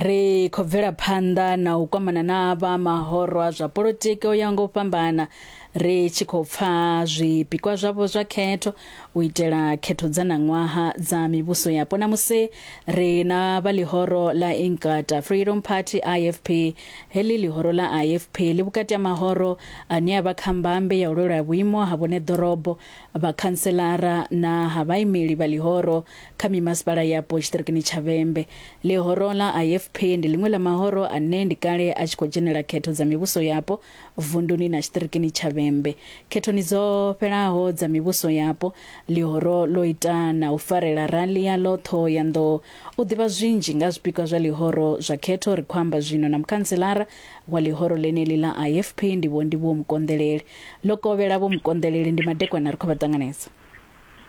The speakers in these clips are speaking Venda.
ri khou bvela phanḓa na u kwamana na vha mahoro a zwa politiki o ya ngo fhambana ri tshi khou pfa zwipikwa zwavho zwa khetho u itela khetho dza ṋaṅwaha dza mivhuso yapo na musi ri na vha ḽihoro ḽa Inkatha Freedom Party IFP heḽi ḽihoro ḽa IFP ḽi vhukati ha mahoro ane a vha kha mbambe ya u lwela vhuimo ha vhone ḓorobo vhakhanselara na ha vhaimeli vha ḽihoro Kha mimasipala yapo tshiṱirikini tsha Vhembe, ḽihoro ḽa IFP ndi ḽiṅwe ḽa mahoro ane ndi kale a tshi khou dzhenela khetho dza mivhuso yapo vunduni na tshiṱirikini tsha Vhembe. Khethoni dzo fhelaho dza mivhuso yapo, ḽihoro ḽo ita na u farela rali yaḽo Ṱhohoyanḓou. U ḓivha zwinzhi nga zwipikwa zwa ḽihoro zwa khetho ri khou amba zwino na mukhantselara wa ḽihoro ḽeneḽi ḽa IFP ndivho ndi Vho Mukonḓeleli. Ḽo kovhela Vho Mukonḓeleli ndi madekwana ri khou vha ṱanganedza.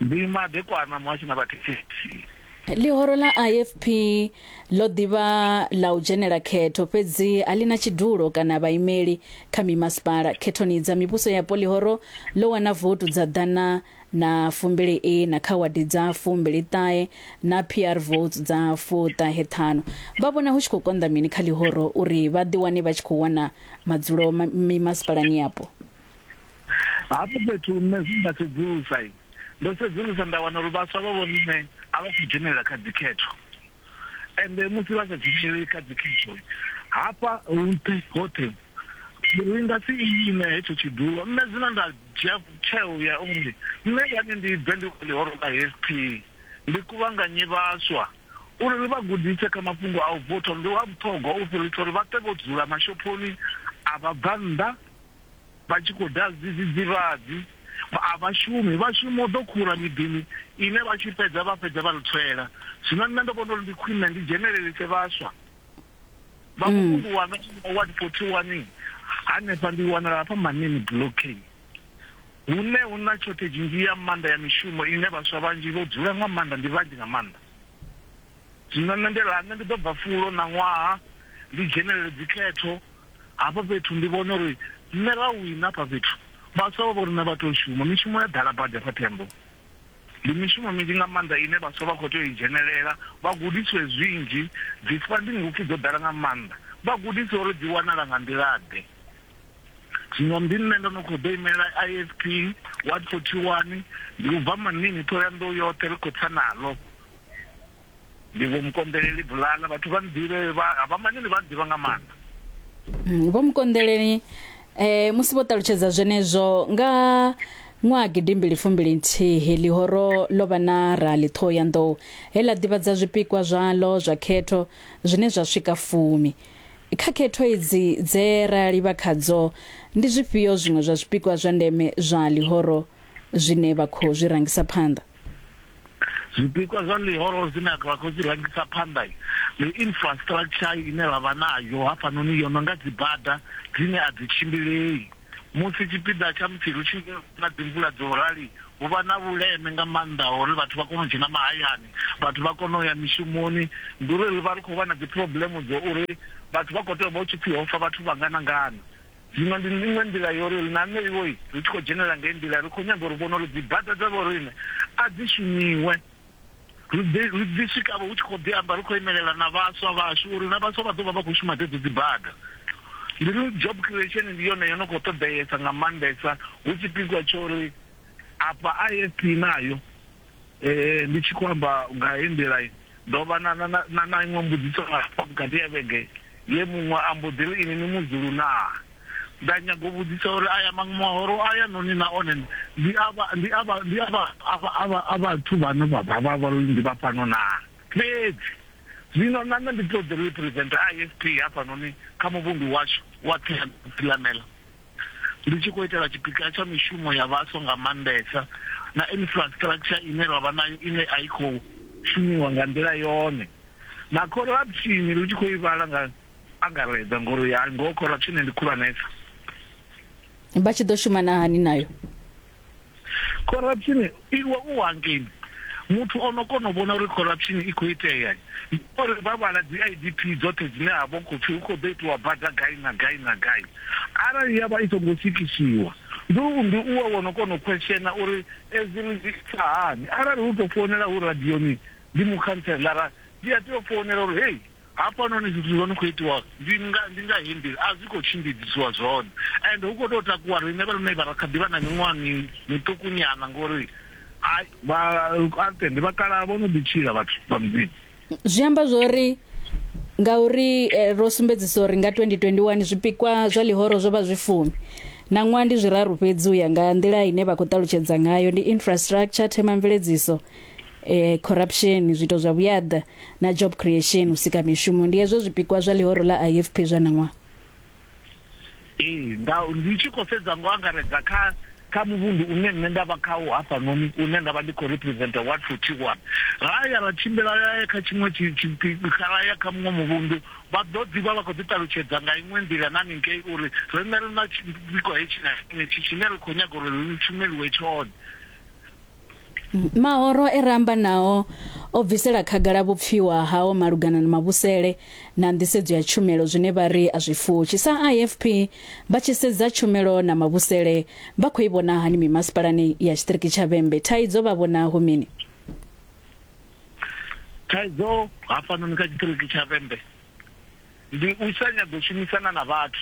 Ndi madekwana muhasho na vhathetshelesi. Ḽihoro ḽa IFP ḽo ḓi vha ḽa u dzhenela khetho fhedzi a ḽi na tshidulo kana vhaimeli kha mimasipala. Khethoni dza mivhuso yapo ḽihoro ḽo wana votu dza ḓana na fumbili iṋa kha wadi dza fumbili ṱahe na PR votes dza fuṱahe ṱhanu. Vha vhona hu tshi khou konḓa mini kha ḽihoro uri vha ḓi wane vha tshi khou wana madzulo mimasipalani yapo? hafho fhethu nṋe zwi nda sedzulusa ndo sedzulusa nda wana uri vhaswa vha vho nṋe a vha khou dzhenelela kha dzikhetho ende musi vha sa dzheneleli kha dzikhetho hafha nṱhe hoṱhe ri nga si ime hetsho tshidulo nṋe zwino nda dzhia tsheo ya uri nṋe yane ndi bve ndi ḽihoro ḽa hp ndi kuvhanganye vhaswa uri ri vha gudise kha mafhungo a u votha ndi wa vhuṱhogwa u fhirisa uri vha ṱe vho dzula mashophoni a vha bva nnḓa Vha tshi khou daha zwidzidzivhadzi, a vha shumi. Vha shuma u ḓo khura miḓini ine vha tshi fhedza vha fhedza vha ri tswela. Zwino nṋe ndo vhona uri ndi khwine ndi dzhenelelise vhaswa vha muvhundu wanga wa Ward 41 hanefha. Ndi wanala hafha Manini Bulokini hune hu na shortage nnzhi ya maanḓa ya mishumo ine vhaswa vhanzhi vho dzula nga maanḓa, ndi vhanzhi nga maanḓa. Zwino nṋe ndi ri nṋe ndi ḓo bva fulo ṋaṅwaha ndi dzhenelele dzikhetho. Hafha fhethu ndi vhona uri nṋe Rawiṋe hafha fhethu vhaswa vha vho riṋe vha tou shuma, mishumo ya ḓala badi hafha Themboni. Ndi mishumo minzhi nga maanḓa ine vhaswa vha khou tea u i dzhenelela vha gudisiwe zwinzhi, dzi funding hupfi dzo ḓala nga maanḓa vha gudisiwe uri dzi wanala nga nḓila-ḓe. Zwino ndi nṋe ndo no khou ḓo imelela IFP ward 41, ndi u bva Manini, Ṱhohoyanḓou yoṱhe ri khou tsa naḽo. Ndi vho Mukonḓeleli Bulala, vhathu vha nḓivhe, vha Havhamanini vha nḓivha nga maanḓa. Mm, vho Mukonḓeleli eh musi vho ṱalutshedza zwenezwo nga ṅwaha gidimbili fumbili nthihi ḽihoro ḽo vha na rali ṱhoho ya nḓou he ḽa ḓivhadza zwipikwa zwaḽo zwa khetho zwine zwa swika fumi kha khetho idzi dze ra livha khadzo ndi zwifhio zwiṅwe zwa zwipikwa zwa ndeme zwa ḽihoro zwine vha khou zwi rangisa phanḓa zwipikwa zwa ḽihoro zwine a vha khou zwi rangisa phanḓa ndi infrastructure ine vha vha nayo hafhanoni yo no nga dzibada dzine a dzi tshimbilei musi tshipiḓa tsha musi ri tshi na dzimvula dzo rali hu vha na vhuleme nga maanḓa ha uri vhathu vha kone u dzhena mahayani vhathu vha kone u ya mishumoni ndi uri ri vha ri khou vha na dzi problem dzo uri vhathu vha khou tea u vha hu tshi pfhi ho fa vhathu vha ngana ngana Zwino ndi iṅwe nḓila yo ri ri ṋameiwe ri tshi khou dzhenela ngei nḓila. Ri khou nyaga uri vhone uri dzibada dza vhoriṋe a dzi shumiwe. Ri ḓi, ri ḓi swika-vho hu tshi khou ḓi amba ri khou imelela na vhaswa vhashu uri na vhaswa vha ḓo vha vha khou shuma dzedzo dzibada. Ndi ri job creation ndi yone yo no khou ṱoḓeesa nga maanḓesa hu tshipikwa tsho ri afha IFP nayo. Ndi tshi khou amba nga hei nḓila, ndo vha na, na, na, na iṅwe mbudziso nga hafha vhukati ha vhege ye muṅwe a mbo ḓi ri, Inwi ni Muzulu naa? Nda nyaga u vhudzisa uri aya maṅwe mahoro a ya noni na one ndi a vha, ndi a vha, ndi a vha, a vha, a vha, a vhathu vhane vha vha, vha vha uri ndi vha fhano naa? Fhedzi zwino na nṋe ndi ṱoḓi u representer IFP hafhanoni kha muvhundu washu wa Tsilanela. ndi tshi khou itela tshipiḓa tsha mishumo ya vhaswa nga maanḓesa na infrastructure ine ra vha nayo ine a i khou shumiwa nga nḓila yone, na khorapshini ri tshi khou i vhala nga angaredza ngori ya ngoho khorapshini ndi khulwanesa. Vha tshi ḓo shuma na hani nayo? corruption iwe u hangini muthu o no kona u vhona uri corruption i khou itea uri vha vhala dzi idp dzoṱhe dzine ha vha khou pfhi hu khou ḓo itiwa bada gai na gai na gai arali ya vha i songo sikisiwa ndi u ndi uwe wo no kona u khweshena uri edzi ri dzi sa hani arali hu tou founela hu radioni ndi mukhantselara ndi a tea u founela uri hei Hafhanoni zwithu zwo no khou itiwa ndi nga ndi nga he nḓila a zwi khou tshimbidzisiwa zwone ende hu khou tou takuwa riṋe vha lune vha ra kha ḓi vha na miṅwaha mi miṱuku nyana ngori hai vha ante ndi vhakalaha vho no ḓi tshila vhathu vha mudzimu. Zwi amba zwori ngauri eh, ro sumbedzisa uri nga 2021 zwipikwa zwa ḽihoro zwo vha zwi fumi na ṅwaha ndi zwiraru fhedzi u ya nga nḓila ine vha khou ṱalutshedza ngayo ndi infrastructure themamveledziso eh, corruption zwiito zwa vhuyaḓa na job creation u sika mishumo ndi hezwo zwipikwa zwa ḽihoro ḽa ifp zwa ṋaṅwaha ee nga ndi tshi khou sedza ngo angaredza kha kha muvhundu une nṋe nda vha khawo hafhanoni une nda vha ndi khou representa ward forty one ra ya ra tshimbila ra ya kha tshiṅwe tshi- tshi- tshi- kha ra ya kha muṅwe muvhundu vha ḓo ḓi vha vha khou ḓi ṱalutshedza nga iṅwe nḓila na ningei uri riṋe ri na tshipikwa hetshi na hetshi tshine ri khou nyaga uri ri shumeliwe tshone Mahoro e ra amba nao o bvisela khagala vhupfiwa hao malugana na mavhusele na nḓisedzo ya tshumelo zwine vha ri a zwi fushi. Sa IFP, vha tshi sedza tshumelo na mavhusele, vha khou i vhona hani mimasipalani ya tshiṱiriki tsha Vhembe? Thaidzo vha vhona hu mini? Thaidzo hafhanoni kha tshiṱiriki tsha Vhembe Ndi u sa nyaga u shumisana na vhathu.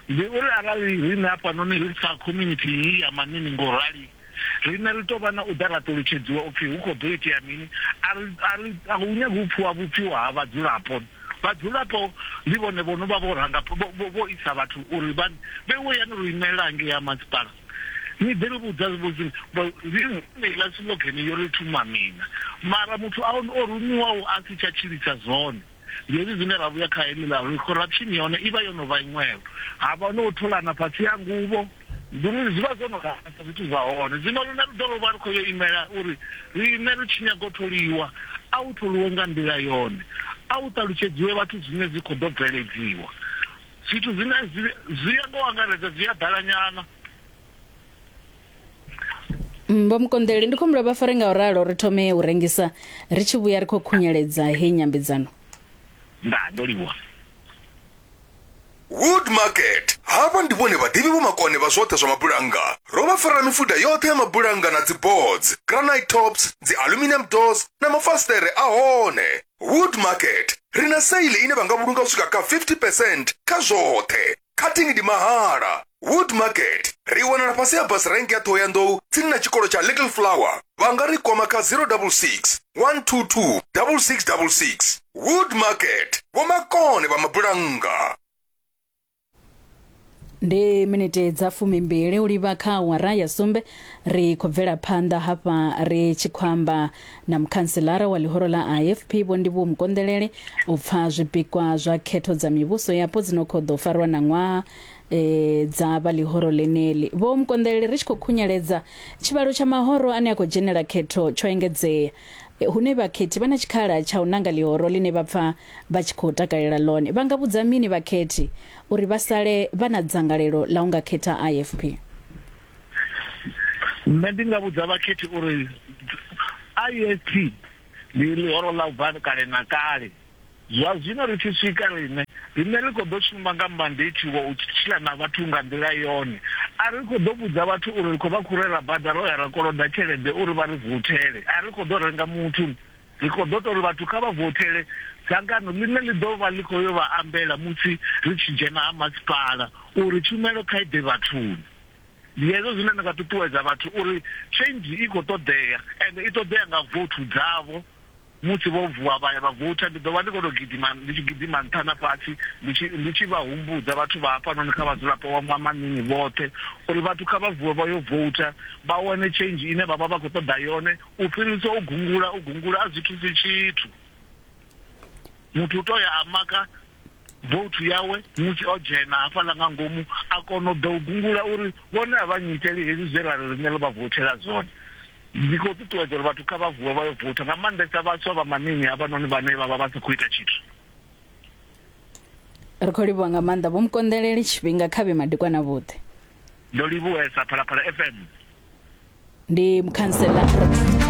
Ndi uri arali riṋe hafhanoni ri sa community iyi ya Manini ngo rali, riṋe ri tou vha na u ḓa ra ṱolutshedziwa upfi hu khou ḓo itea mini, a ri, a ri, a hu nyagi u pfiwa vhupfiwa ha vhadzulapo. Vhadzulapo ndi vhone vho no vha vho ranga, vho, vho isa vhathu uri vha vheiwe yani ro imelela hangei ha masipala. Ni ḓi ri vhudza heiḽa siḽogene yo ri thumamina, mara muthu a o rumiwaho a si tsha tshilisa zwone. Zwezwi zwine ra vhuya kha heḽiḽa uri khorapshini ya hone i vha yo no vha iṅwevho, ha vha no tholana fhasi ha nguvho, nḓuni zwi vha zwo no rasa zwithu zwa hone. Zwino riṋe ri ḓo vha ri khou yo imela uri riṋe ri tshi nyaga u tholiwa, a hu tholiwe nga nḓila yone, a hu ṱalutshedziwe vhathu zwine zwi khou ḓo bveledziwa. Zwithu zwine zwi ya nga u angaredza zwi a ḓalanyana. Vho Mukonḓeli ndi khombo vha fare nga u ralo ri thome u rengisa ri tshi vhuya ri khou khunyeledza he nyambedzano. Ndaa ndo livhuwa. Wood Market, Havha ndi vhone vhaḓivhi vho makone vha zwoṱhe zwa mabulannga. Ro vha farela mifuda yoṱhe ya mabulannga na dzi boards, granite tops, dzi aluminium doors na mafasiṱere a hone. Wood Market, Ri na sale ine vha nga vhulunga u swika kha 50 percent kha zwoṱhe. cutting ndi mahala wood market ri wanala fhasi ya bus rank ya thohoyandou tsini na tshikolo tsha little flower vha nga ri kwama kha 066 122 6666 wood market vhomakone vha mabulannga ndi miniti dza fumimbili u livha kha awara ya sumbe ri khou bvela phanḓa hafha ri tshi khou amba na mukhantselara wa ḽihoro ḽa IFP Vho Ndivhuwo Mukonḓelele u pfa zwipikwa zwa khetho dza mivhuso yapo dzi no khou ḓo farwa na ṅwaha e, dza vha ḽihoro ḽeneḽi. Vho Mukonḓelele ri tshi khou khunyeledza, tshivhalo tsha mahoro ane a khou dzhenela khetho tsho engedzea, e, hune vhakhethi vha na tshikhala tsha u nanga ḽihoro ḽine vha pfa vha tshi khou takalela ḽone. Vha nga vhudza mini vhakhethi uri vha sale vha na dzangalelo ḽa u nga khetha IFP? nṋe ndi nga vhudza vhakhethi uri IST ndi ḽihoro ḽa u bva kale na kale zwa zwino ri tshi swika riṋe riṋe ri khou ḓo shumba nga mandate wa u tshila na vhathu nga nḓila yone a ri khou ḓo vhudza vhathu uri ri khou vha khurela bada ro ya ra koloda tshelede uri vha ri vuthele a ri khou ḓo renga muthu ri khou ḓo tou ri vhathu kha vha vothele dzangano ḽine ḽi ḓo vha ḽi khou yo vha ambela musi ri tshi dzhena ha masipala uri tshumelo kha i ḓe vhathuni ndi hezwo zwine nda nga ṱuṱuwedza vhathu uri change i khou ṱoḓea and i ṱoḓea nga vothu dzavho musi vho vuwa vha ya vha votha ndi ḓo vha ndi khou tou gidima ndi tshi gidima nṱha na fhasi ndi tshi vha humbudza vhathu vha hafhanoni kha vhadzulapo wa mwamanini vhoṱhe uri vhathu kha vha vuwe vha yo votha vha wane change ine vha vha vha khou ṱoḓa yone u fhirisa u gungula u gungula a zwi thusi tshithu muthu u tou ya a maka vouthu yawe musi o dzhena hafhaḽa nga ngomu a kona u ḓa u gungula uri vhone a vha nnyiteli hezwi zwe ra ri riṋe ro vha voutela zwone. Ndi khou ṱuṱuwedza uri vhathu kha vha vuwe vha yo voutha, nga maanḓesa vhaswa vha maṋini havhanoni vhane vha vha vha sa khou ita tshithu. Ri khou livhuwa nga maanḓa Vho Mukonḓeleli, tshifhinga kha vhe madekwana vhuḓe. Ndo livhuwesa Phalaphala FM. Ndi Mukhanseḽa.